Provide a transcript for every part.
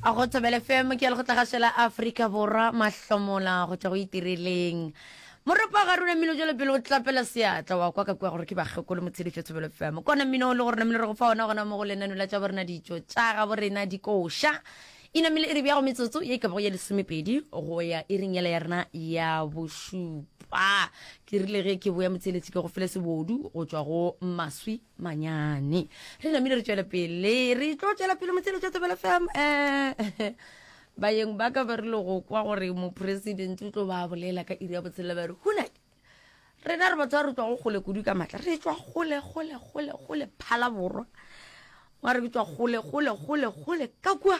a go thobele fm ke ya le go tlagašo la aforika borwa mahlomola go tšwa go itireleng moropa ga rona mmino jalo pele o tlapela seatla wa kwa ka kwa gore ke bakgekolo motshedifo thobelo fm kona mmino o le gore namele re go fa ona gona mo go lenano la tša borena ditšo tša ga borena dikoša e namele e re bjago metsotso ye ka bago ya lesomepedi go ya e reng yela ya rena ya bošupa ke rile ge ke boya motseletsi ke go fele sebodu go tšwa go maswi manyane re namile re tšwela pele re tlo tšwela pele motshelo tša tebela fam um eh, bayeng ba ka ba rile go kwa gore mopresidente o tlo ba bolela ka iri ya botshela ba re hunake rena re batho ba re tswa go gole kudu ka maatla re tswa gole gole gole gole phala borwa wa re ke tswa gole gole gole gole ka kua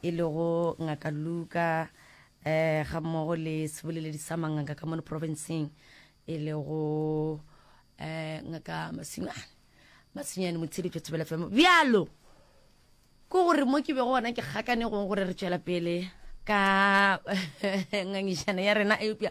e lego Ngaka Luka um gammogo le seboleledi sa manganga ka mono profenseng e lego um ngaka masinyane masinyane motsheditšo thebela femo bjalo ke gore mo ke bego gona ke gakane gong gore re tšwela pele ka ngangišana ya rena eupša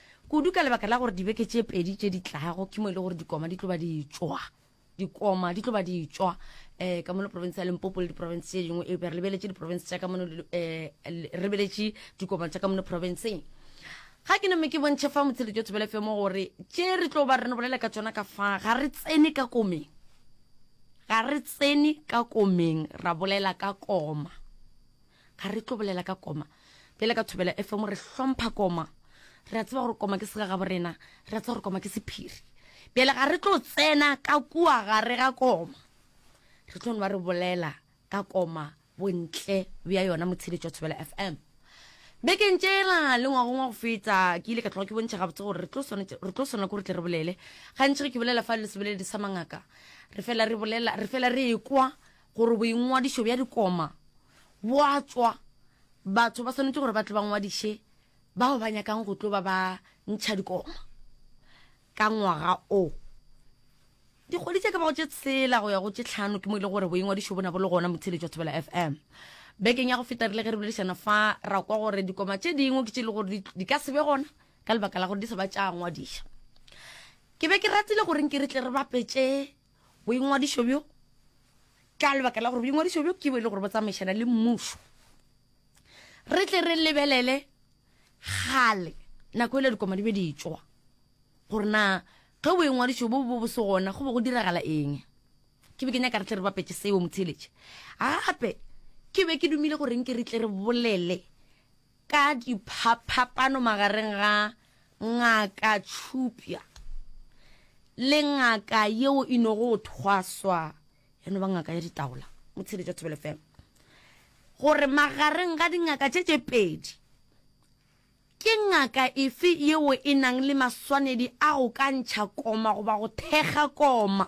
kudu ka lebaka la gore dibeke tše pedi tše di tlago ke mo e le gore dikoma di tlo ba di tšwa dikoma di tlo ba di tšwa um ka mono province ya limpopo le diprovince tše dingwe eupša re lebeletše diprovince tša ka mono um re beletše dikoma tša ka mono provinceng ga ke name ke bontšhe fa motsheletso o thobele femo gore tše re tlo ba re no bolela ka tsona ka fa ga re tsene ka komeng ga re tsene ka komeng ra bolela ka koma ga re tlo bolela ka koma pele ka thobela fm re hlompha koma re a tseba gore koma ke segagabo rena re a tseba gore koma ke sephiri pele ga re tlo tsena ka kua gare ga koma re tlo ba re bolela ka koma bontle bja yona motshedetso wa thobela fm bekeng tšela le ngwagong wa go feta ke ile ka tloga ke bontšha gabotse gore re tlo swana kore tle re bolele gantši ge ke bolela fa le seboledi sa mangaka re fela re bolela re fela re ekwa Gore boingwadišo bja dikoma bo a tšwa, batho ba swanetše gore ba tle ba ngwadiše bao ba nyakang go tlo ba ba ntšha dikoma ka ngwaga o. Dikgwedi tše ka bago tše tshela go ya go tše tlhano ke mo e le gore boingwadišo bona bo le gona motheletši wa Thobela FM. Bekeng ya go feta rile ge re boledišana fa ra kwa gore dikoma tše dingwe ke tše e le gore di ka se be gona ka lebaka la gore di sa ba tša ngwadiša. Ke be ke ratile gore nke re tle re bapetše Boingwadišo bjo ka lebaka la gore boingwadišo bjo ke bo e le gore bo tsamaišana le mmušo. Re tle re lebelele gale nako e le dikoma di be di tšwa gore na ge boingwadišo bo bo bo se gona go be go diragala eng. Ke be ke nyaka re tle re bapetše seo motheeletše. Gape ke be ke dumile gore nke re tle re bolele Ka diphaphapano magareng ga Ngaka Tšhupya le ngaka yeo e no go thwaswa ya no ba ngaka ya ditaola mo tsheletšo ya Thobela FM gore magareng ga dingaka tše tše pedi ke ngaka efe yeo e nang le maswanedi a go ka ntšha koma goba go thekga koma.